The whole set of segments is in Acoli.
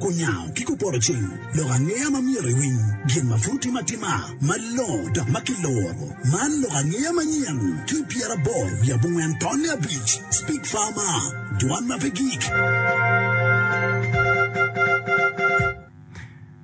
Kunya ki kuporo cing, lok angeya ma myero iwiny gin ma pud tim atima malongo dok ma kiloro. Man lok angeya manyen ki pyeraboro wiye abongwen tonne abic, Speak Farmer, Dwan ma pe gik.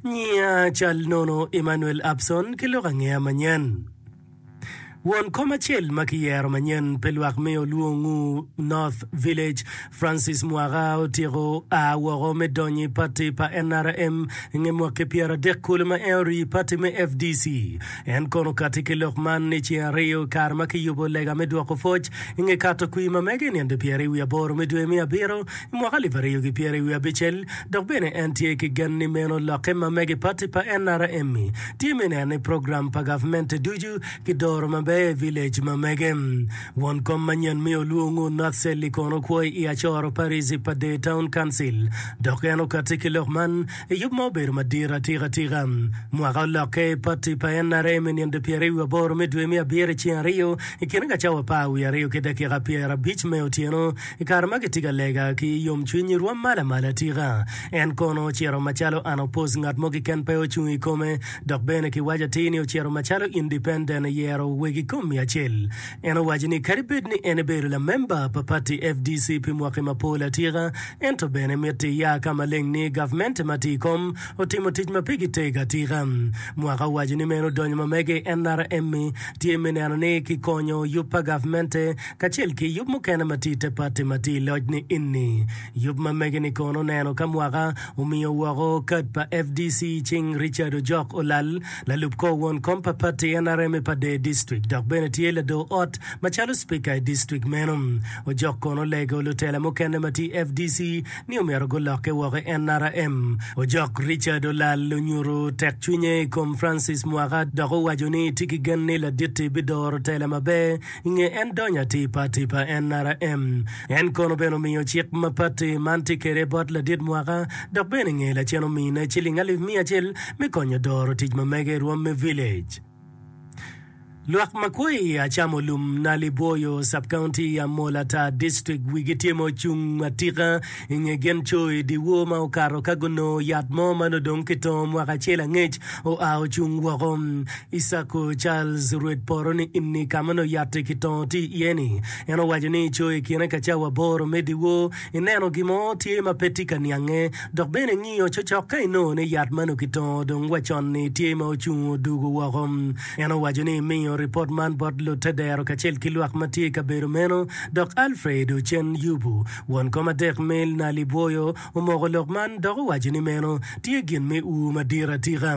Nyinga cal nono Emmanuel Abson ki lok angeya manyen. Won kom acel ma kiyero manyen pe lwak me olwongu North Village, Francis Mwaka otyeko a woko me donyo i pati pa nrm nge mwaki pyeradek kulu ma en orii pati me fdc. En kono okati ki lok man i ceng ariyo i kare ma kiyubo lega me dwoko pwoc nge kato kwii ma mege i nino dyepyeraryo wiye aboro me dwe me abiro mwaka alip aryo ki pyeri wiye abicel, dok bene en tye ki gen ni meno lokke ma mege pati pa NRM tye me neno ni program pa gavmente ducu ki doro maber i village ma mege. Won kom manyen me Olwongo North Celli kono kwo i Acoro Parish pa Dee Town Council dok en okati ki lok man i yub ma obedo madit atika tika mwaka olokke i pati pa NRM i nino pyeri wiye aboro me dwe me abiro i ceng aryo i kine ka cawa apar wiye aryo ki dakika pyera abic me otyeno I kare ma kitye ka lega ki yomcwiny, irwom malo amala tika? En kono ocito macalo unopposed, ngat mo keken pe ocung i kome, dok bene kiwaco atir ni ocito macalo independent, iyero wegi komi acel. En owaco ni kadi bed ni en ebedo lamemba pa pati fdc pi mwaki mapol atika, ento bene mitte iya ka maleng ni gavmente ma tye i kom otimo tic ma pe giteg atika. Mwaka owaco ni meno odonyo ma mege, en nara Emmy tye me neno ni kikonyo yub pa gavmente kacel ki yub mukene ma tye i te pati ma tye i loc ni inni. Yub ma mege ni kono neno ka mwaka omiyo woko kad pa FDC i cing Richard Ojok Olal, lalub kor won kom pa pati nrm i Pader District dok bene tye lado ot macalo Spika i District meno. Ojok kono olego lutela mukene ma tye i FDC ni omyero gulokke woko i nrm. Ojok Richard Olal onyuto tek cwinye i kom Francis Mwaka dok owaco ni tye ki gen ni Laditti bidoro tela maber I nge en donyo atipa atipa NRM, en kono bene omiyo cik mapatti man tye kede bot ladit mwaka dok bene inge lacen omine ciling alip miya acel me konyo doro tic ma mege irwom me village. Lwak makwo i Achamo Lum, Nali Bwoyo, Sub-County, Amola Tar District wigi tye ma ocung atika I nge gin coyi, dyewor ma okato ka gunongo yat mo ma nongo dong kitongo mwaka acel angec oa ocung woko. Isako Charles, rwed poto-ni inni ka ma nongo yat-ti kitongo tye iye-ni, en owaco ni, Coyi i kine ka cawa aboro me dyewor, ineno gin mo tye ma pe tye ka niange. Dok bene ingiyo cocok ka inongo ni yat ma nongo kitongo dong wa con-ni tye ma ocung odugo woko. En owaco ni, Imiyo ripot man bot lutedero kacel ki lwak ma tye i kabedo meno, Dok Alfred ocen yubu. Won kom adek me nali bwoyo omoko lok man dok owaco ni meno tye gin me ur madit atika.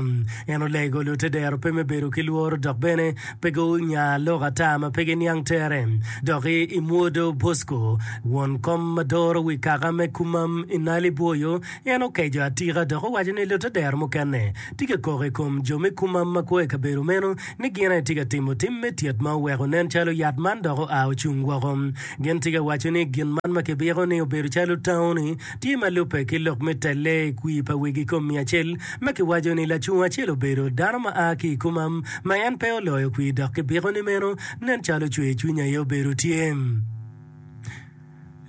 En olego lutedero pe me bedo ki lworo dok bene pe gunya lok ata ma pe giniang tere. Dok i i mwodo Bosco, won kom ma doro wi kaka me Kumam i nali bwoyo, en okeco atika dok owaco ni lutedero mukene tye ka koko i kom jo me Kumam ma kwo i kabedo meno ni gin aye tye ka timo tim me tyet ma oweko nen calo yat man dok oa ocung woko. Gin tye ka waco ni gin man ma kibiko ni obedo calo tawo-ni tye ma lubbe ki lok me telle i kwir pa wegi kom miya acel, ma kiwaco ni lacung acel obedo dano ma a ki i komam ma en pe oloyo kwir dok kibiko ni meno nen calo cwer cwiny aye obedo tye.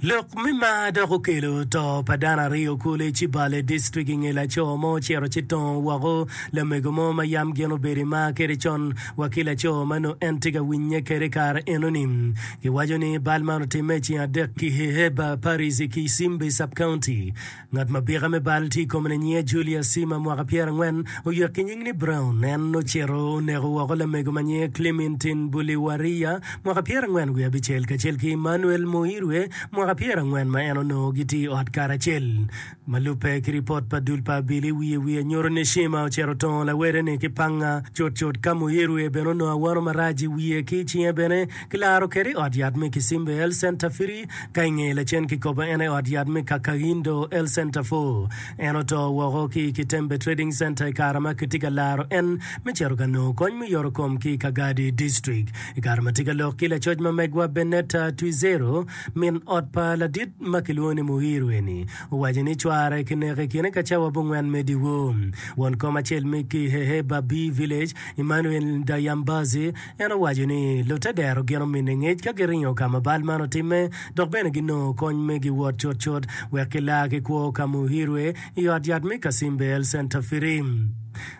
Lok me mar dok okelo to pa dano aryo kulu i Cibale District i nge laco mo ocito ci tongo woko lamego mo ma yam gin obedo i mar kwede con wa ki laco ma nongo en tye ka winye kwede i kare enoni. Giwaco ni bal man otimme i ceng adek ki i Heber Parish ki i Simbi Sub-County. Ngat ma bika me bal tye i kome-ni nyinge Julia Sima, mwaka pyera angwen, oyek ki nying ni Brown. En ocito oneko woko lamego ma nyinge Clementin Buliwariya, mwaka pyera angwen wiye abicel, kacel ki Emmanuel Muirwe, mwaka pyera angwen, ma en onongo gitye i ot karacel. Ma lubbe ki ripot pa dul pa Abili wiye wiye nyuto ni Cima ocito otongo lawede-ni ki panga cutcut ka muiruye bene onongo awano marac i wiye ki i cinge bene kilaro kwede i ot yat me Kisimbe, El Center Firi, ka i ngeye lacen kikobo en aye ot yat me Kakahindo, El Center Four. En oto woko ki i Kitembe Trading Center i kare ma kitye ka laro en me cito ka nongo kony me yorokom ki i Kagadi District. I kare ma tye ka lok ki lacoc ma megwa Bennetta Twizero, Min ot pa ladit ma kilwongo ni Muhiru eni owaco ni cware kineko i kine ka cawa abongwen me dyewor. Won kom acel me Kihehe Babi Village, Emmanuel Ndayambazi, en owaco ni lutte dero gin omine ngec ka giringo ka ma bal man otimme dok bene ginongo kony me giwot cutcut wek gila ki kwo ka Muhirue i ot yat me Kasimbe Health Centre Firii.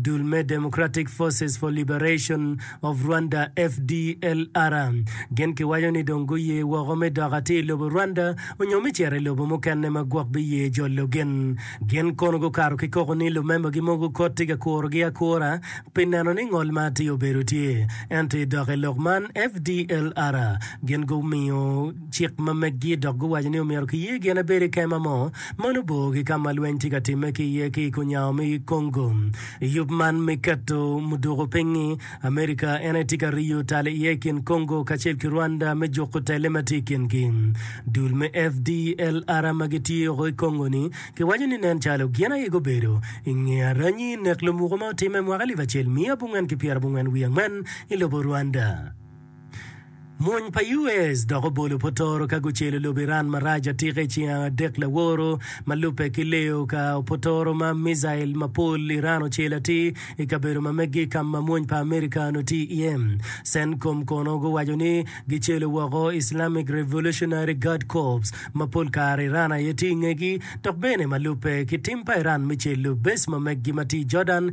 Dul me Democratic Forces for Liberation of Rwanda, FDLR, gin kiwaco ni dong guye woko me dok atir i lobo Rwanda onyo me cito i lobo mukene ma gwok biye jolo gin. Gin kono gukato ki koko ni lumemba-gi mogo kot tye ka kurogi akura pi neno ni ngol ma atir obedo tye. Ento i dok i lok man, FDLR gin gumiyo. Cik ma meggi dok guwaco ni omyero kiye gin ebed i kema mo ma nongo bor ki ka ma lweny tye ka timme ki iye ki i kunyawa me Congo. Yub man me keto muduku piny Amerika en aye tye ka riyo tal iye i kin Congo kacel ki Rwanda me juko telle ma tye i kingi. Dul me FDLR ma gitye woko i Congo-ni kiwaco ni nen calo gin aye gubedo i nge aranyi nek lumuku ma otimme mwaka alip acel miya abongwen ki pyera abongwen wiye angwen i lobo Rwanda. Mony pa US dok obolo potoro ka gucelo lobo Iran marac atika i ceng adek laworo ma lubbe ki leyo ka opotoro ma micail mapol Iran ocelo atir i kabedo ma meggi ka ma mony pa Amerika onongo tye iye. Centcom kono guwaco ni gicelo woko Islamic Revolutionary Guard Corps ma pol kare Iran aye tye i ngegi dok bene ma lubbe ki tim pa Iran me celo base ma meggi ma tye i Jordan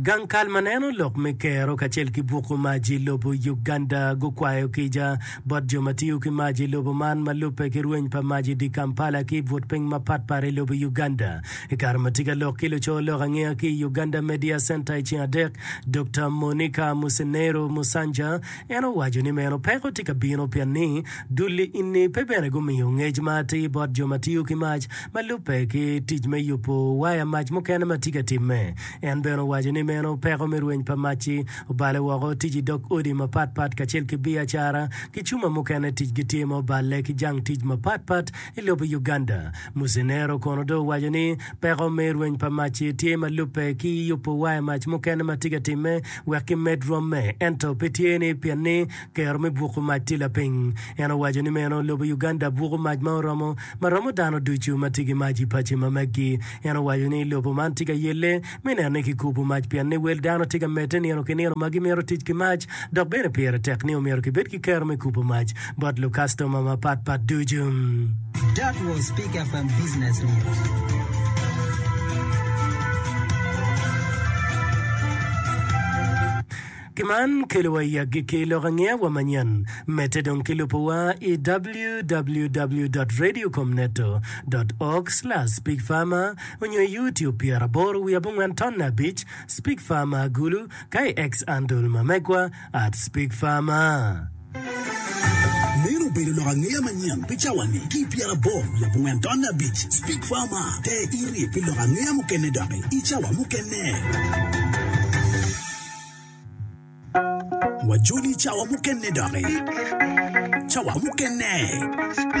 Gang kal ma neno lok me kero kacel ki buku mac i lobo Uganda gukwayo kica bot jo ma tiyo ki mac i lobo man ma lubbe ki rweny pa mac i dye Kampala ki i but piny mapatpat i lobo Uganda. I kare ma tye ka lok ki luco lok angeya ki i Uganda Media Center i ceng adek, Dokta Monica Musenero Musanja, en owaco ni meno peko tye ka bino pien ni dul i inni pe bene gumiyo ngec ma atir bot jo ma tiyo ki mac ma lubbe ki tic me yubo waya mac mukene ma tye ka timme. En bene owaco ni meno peko me rweny pa mac-ci obale woko tic i dog odi mapatpat kacel ki biacara ki cuma mukene ticgi tye ma oballe ki jang tic mapatpat I lobo Uganda, Musenero kono dong owaco ni peko me rweny pa mac-ci tye ma lubbe ki yubo waya mac mukene ma tye ka timme wek kimed rwomme ento pe tye ni pien ni kero me buko mac tye lapiny. En owaco ni meno lobo Uganda buko mac ma oromo ma romo dano ducu ma tye ki mac i paci ma meggi. En owaco ni lobo man tye ka yelle me neno ni kikubo mac pien ni wel dano tye ka medde nino ki nino ma gimito tic ki mac dok bene pire tek ni omyero kibed ki kero me kubo mac bot lukastoma mapatpat ducu. That was Big FM Business News. Gin man kelowa i agikki lok angeya wa manyen, medde dong ki lubo wa i www dot radio com neto dot org slash speak farmer onyo i youtube pyera aboro wiye abongwen tonne abic speak farmer agulu ka i X andle ma megwa at speak farmer. Meno obedo lok angeya manyen pi cawa ni ki i pyera aboro wiye abongwen tonne abic speak farmer ter iri pi lok angeya mukene doki i cawa mukene. Wajoli cawa mukene doki. Cawa mukene.